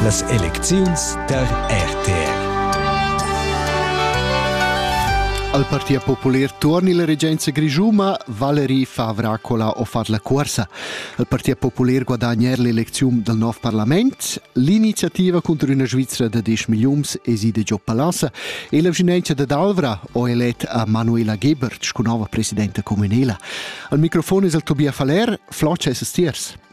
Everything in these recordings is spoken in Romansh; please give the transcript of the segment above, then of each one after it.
Las elecziuns tar RTR. Al Partia Popular torni la regenza grischuma Valerie Favracola o far la cuorsa. Al Partia Popular guadagner l'elecziun dal nov parlament, l'iniziativa contro una Svizzera da 10 milions eside Gio Palassa e la vicinanza da Alvra o elet a Manuela Gebert con nova presidenta comunela. Al microfon es el Tobia Faller, Floce es Stiers.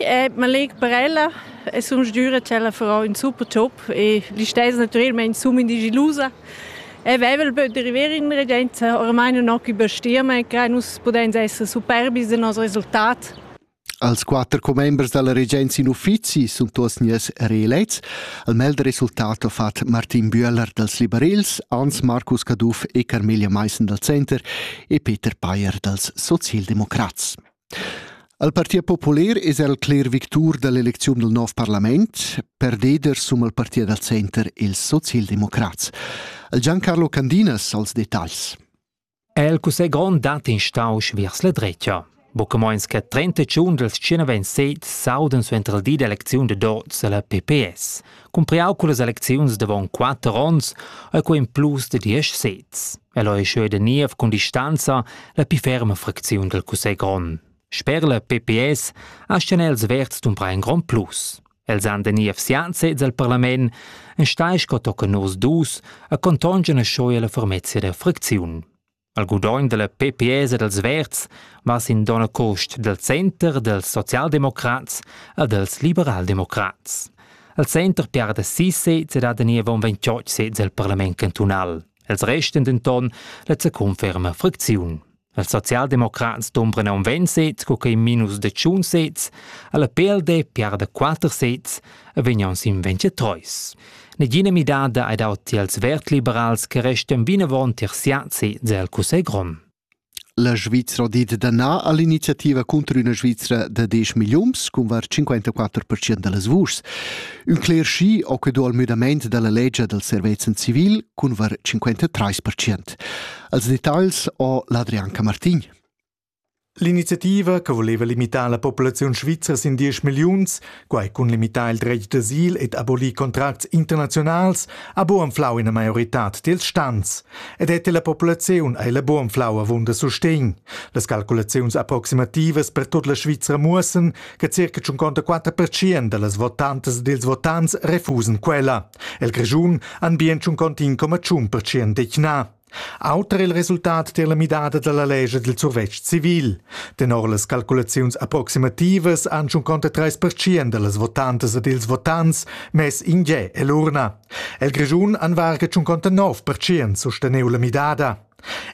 Eh, ma leg per ella e sun sdüra ch'ella farà ün super top e l'istess natüralmaing sun indegilusa. E vaiva il böt da river in regenza, oramai nun ho chi bestia, ma crai nus pudains esser superbis da nos resultat. Als quatter commembers dalla regenza in uffizi sun tuos nies reelets. Al mel da resultat ho fat Martin Bühler dals Liberals, Ans Markus Caduff e Carmelia Meissen dal Center e Peter Payer dals Sozialdemokrats. Al Partit Popular es el cler victur da l'elecziun dal nov parlament, perdeder sum al partit dal center ils socialdemocrats. El Giancarlo Candinas als detagls. El cussegl grond dat instausch vers la drecha. Bucemains che 31 dals 127 s'audan suenter il di d'elecziun da dots alla PPS, cumpriau cullas elecziuns davon 4 ons e co in plus da 10 sezs. El ei scheu da niev cun distanza la pli ferma fracziun dal cussegl grond. Sper la PPS astgan els verds dumbrar in grond plus. Els han da niev sian sez al parlament, enstei sco tocan nus dus a contongen a schoi alla fermezia da fracziun. Al gudogn della PPS e dels Verds va sin dona cost del Center dels Sozialdemokrats a dels Liberaldemokrats. Al Center piarda si sez ed ha da niev on 28 sez al parlament cantunal. Els restan denton lezza conferma fricziun. Els socialdemocrats dombran aunc ventg sez, co che minus de tschun sez, alla PLD piar da quater sez e vegnan sin vencetreus. Negina midada ei dau tiels vertliberals che restan vinavon tier siat sez el Cussegl grond. La Svizra dit da na a l'iniziativa cunter üna Svizra da 10 milliuns cun var 54% da las vuschs. Ün cler schi ho que do al müdamaint da la legia dal servezzan civil cun var 53%. Als detagls ho l'Adrianca Martin. L'iniziativa che voleva limitare la popolazione svizra in 10 milliuns Quai cun limitar il dretg d'asil ed abolir contracts internaziunals ha Buonflau ina maioritad dils stans ed è la populaziun ei la Buonflau avunda sustegn. Las calculaziuns approximativas per tut la Svizra muossan che circa 54% dallas votantas e dils votants refusan quella. El Grischun han bien 51,1% dechnà. Auter il resultat della midada dalla lescha dil survetsch civil. Tenor las calculaziuns approximativas han schon conter 30% dallas votantas ed ils votants mess in geell'urna. El Grischun han varga schon conter 9% susteniu la midada.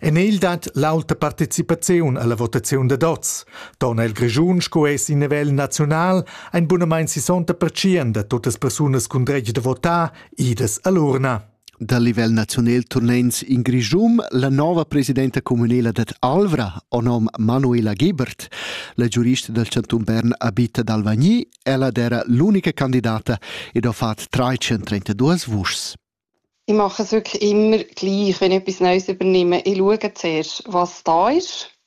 En el dat l'auta participaziun alla votaziun da dots. Tona il Grischun sco es in nivel naziunal ein bunamain 60% da tuttas persunas cun dretg da votar idas all'urna. Da livel naziunal turnens in Grischun la nova presidenta communala dad Alvra, onom Manuela Gebert. La giurista dal Cantun Bern abita d'Alvagni. Ella era l'unica candidata ed ha fatto 332 vuschs. Ich mache es wirklich immer gleich, wenn ich etwas Neues übernehme. Ich schaue zuerst, was da ist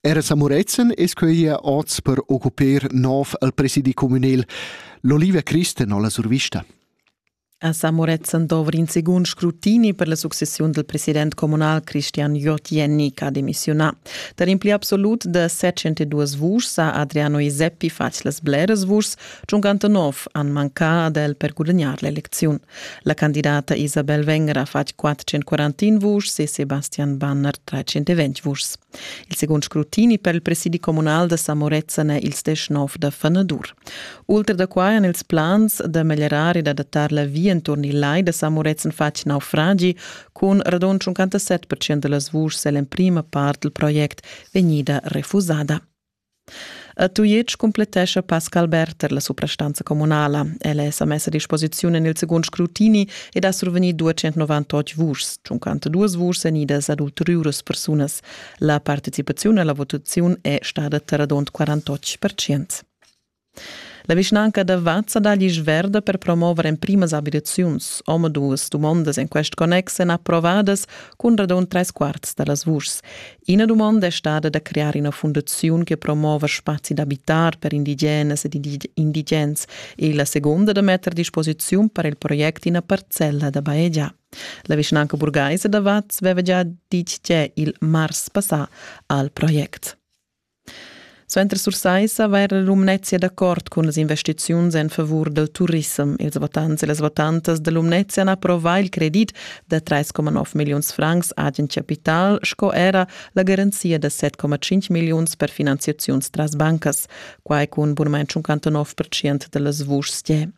Era a Murezzan es quei gia oz per occuper nov al presidi communal. L'Olivia Christen ho la survista. A Sa Murezzan dovri in secund scrutini per la successiun del president comunal Christian Jott Jenny che ha demissionà. Per implir absolut da 702 vuschs ha Adriano Iseppi fatg las bleras vuschs, giungant nov han mancà ad el per gudagnare l'eleziun. La candidata Isabel Wenger ha fatg 441 vuschs e Sebastian Banner 320 vuschs. Il secund scrutini per il presidi comunal da Samorezza n'è il 19 da Fanadur. Ultra da quai han ils plans da meglierar e d'adattar la via intorn il lai da Samorezen fatg naufragi cun radund 57% da las vuschs e l'emprima part del project vegnida refusada. A Tujetsch cumplettescha Pascal Berther la suprastanza communala. El è sa mess a disposiziun en il segund scrutini ed ha survegnì 298 vuschs, 52 vuschs vegnidas ad ulteriuras persunas. La participaziun alla votaziun è stada tar radund 48 percent. La vischnanca da Vazza dà l'isch verda per promover emprimas abitaziuns. Omaduas dumondas en quest connex èn approvadas cun radund trais quarts da las vuschs. Ina dumonda è stada da crear ina fundaziun che promova spazi d'abitar per indigenas ed indigens e la segunda da metter a disposiziun per il project ina parcella da bajegiar. La vischnanca burgaisa da Vaz aveva già ditg tge il mars passà al project. Suenter Sursaissa va era la Lumnezia d'accord cun las investiziuns en favur dal turissem. Ils votants e las votantas da Lumnezia han approvà il credit da 3,9 milliuns francs agen chapital sco era la garanzia da 7,5 milliuns per finanziaziuns tras bancas, quai cun bunamain 59% da las vuschs tie.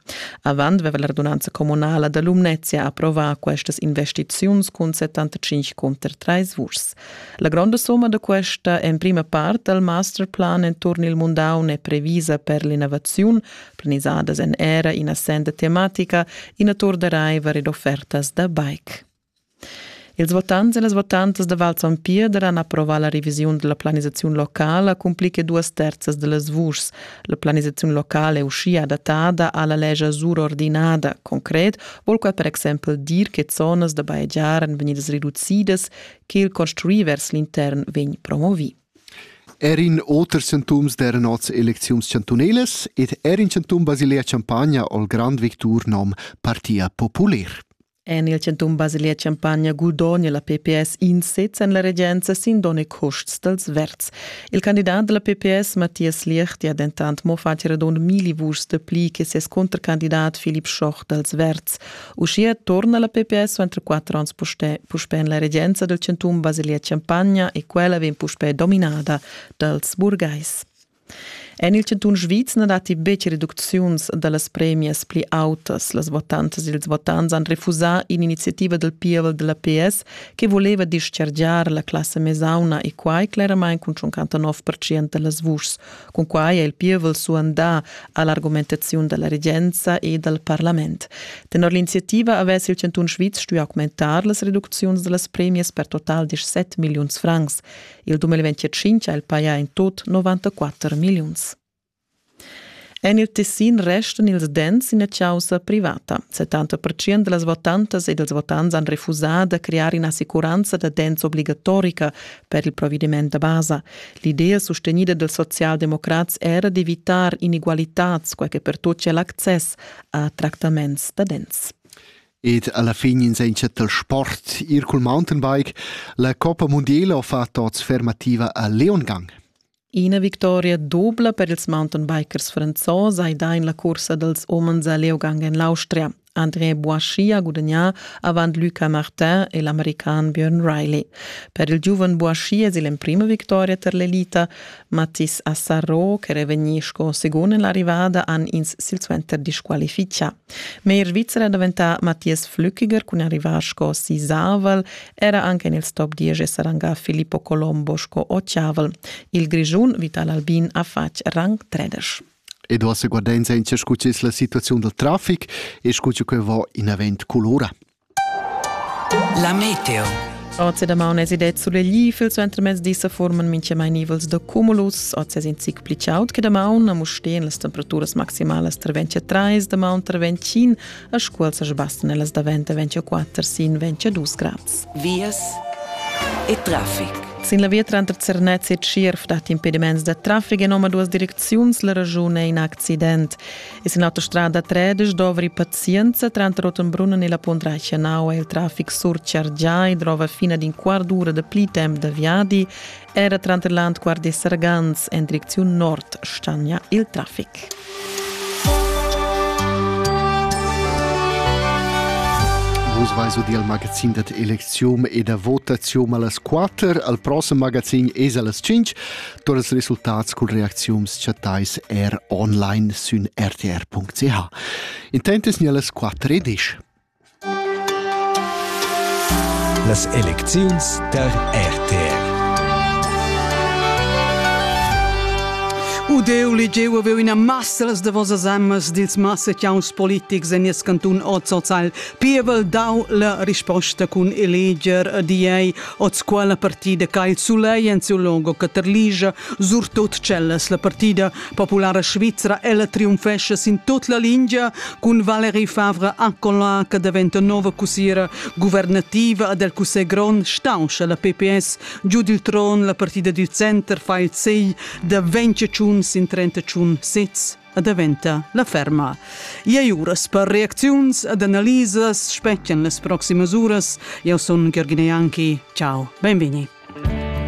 Avant aveva la radunanza communala da Lumnezia approvà questas investiziuns cun 75 cunter 3 vuschs. La gronda summa da questa emprima part dal masterplan enturn il mundaun è previsa per l'innovaziun, planisadas en era ina senda tematica, ina tur da raiver ed offertas da bike. Ils votants e les votantas da Val San Pieder han approvà la revisiun della planisazione locale cumplice duas terzas dellas vuschs. La planisazione locale è uscì adattata alla legge azur ordinada. Concret vol quel per exempel dir che zonas da baegiar èn vegnidas riducidas ch'il construir vers l'intern vegn promovi. Er in oter symptoms der nots elecziums chantuneles ed er in chantum Basilea Champagna ol grand victur nom Partia Populer. En il chantum Basilea Champagna guldogna la PPS in sez en la regenza sin donne costs dals verts. Il candidat della PPS Mathias Liechti ha dentant mo fatg radund milli vuschs de pli che ses contracandidat Philipp Schoch dals verts. Uschia torna la PPS entro quattro anni puspè, puspè en la regenza del centum Basilia Champagna e quella vegn puspè dominada dals burgais. En il cantun Sviz na datti betg reducziuns da las premias pli autas. Las votantas e ils votants han refusà in'iniziativa del pievel della PS che voleva dischargiar la classa mesauna e quai cleramain cun 59% da las vuschs, Cunquai è il pievel suandà a l'argumentaziun da la regenza e dal parlament. Tenor l'iniziativa avess il chantun Sviz stuì augmentar las reducziuns da las premias per total diesch set milliuns francs. Il 2025 ha el pajà in tot 94 milliuns. En il Tessin restan ils dents ina chaussa privata. 70% da las votantas e dels votants han refusà da creare un'assicuranza da dents obligatorica Per il provediment da basa, l'idea sustegnida dals socialdemocrats era d'evitar inegualitads, quai che pertochia l'access a tractaments da dents. Ed alla fin in senza sport ir cul mountainbike, la Coppa Mondiale ha fatto fermativa a Leongang. Ina victoria dubla per ils mountainbikers franzos hai dà en la cursa dals umens a Leogang en l'Austria. André Boischi ha gudagnà avant Luca Martin e l'american Björn Riley. Per il giuven Boischi es l'emprima victoria per l'elita. Matisse Assarro, che è vegnì sco secund en l'arrivada, han ins silsuenter disqualifichà. Meir Svizra è daventà Mathias Flückiger cun arrivar sco sisavel. Era anche nel top 10 è sarangà Filippo Colombo sco ottavel. Il Grischun Vital Albin ha fatg rang 13. Ed ossa guardain senza scu la situaziun dal trafic e scu che va in avent colora. La meteo. Oz da maun es id sulegli, fil suenter mezdi sa forman minchamai nivels da cumulus, oz es in zic pli chaud che da maun, a Mustér las temperaturas maximalas tra 23 da maun tra 25, a Scuol sa sbassan ellas da 24 sin 22 grads. Vias e traffic. Sin la via tranter Zernez e Tschierf dat impediments da traffic in oma duas direcziuns, la ragiun è in accident. E sin l'autostrada 13 dovri pazienza, tranter Rottenbrunnen e la Pondrachenau è il traffic surchargià e drova fina d'in quart d'ura da pli temp da viadi. Era tranter Landquart e Sargans, en direcziun nord, stagna il traffic. Vus vais odi al magazin dat eleczium e da votazium allas 4, al prossem magazin es allas 5. Tuts ils resultats cun reacziuns chattais er online sün rtr.ch. Intentes nielas 4 Las elecziuns der RTR. U deu ligeu aveu ina massa las davosas ammas dils massechiaus politics en nies cantun Ozozzal. Pievel dau la risposta cun eleger a diei Oz qua la partida che ha il sulai en siu logo Caterlisha, surtut tschellas la partida populara svizra ella triumfescha sin tut la lingia cun Valérie Favre Accola che daventa nova cusiera governativa ad el cussegl grond stauscha la PPS giu dil tron la partida dil center fa il segl da 20 tschun sin 30 tschun sez. daventa la ferma. Iei uras per reacziuns ed analisas spetgan las proximas uras. Eu sun Gergine Janki. Ciao, benveni.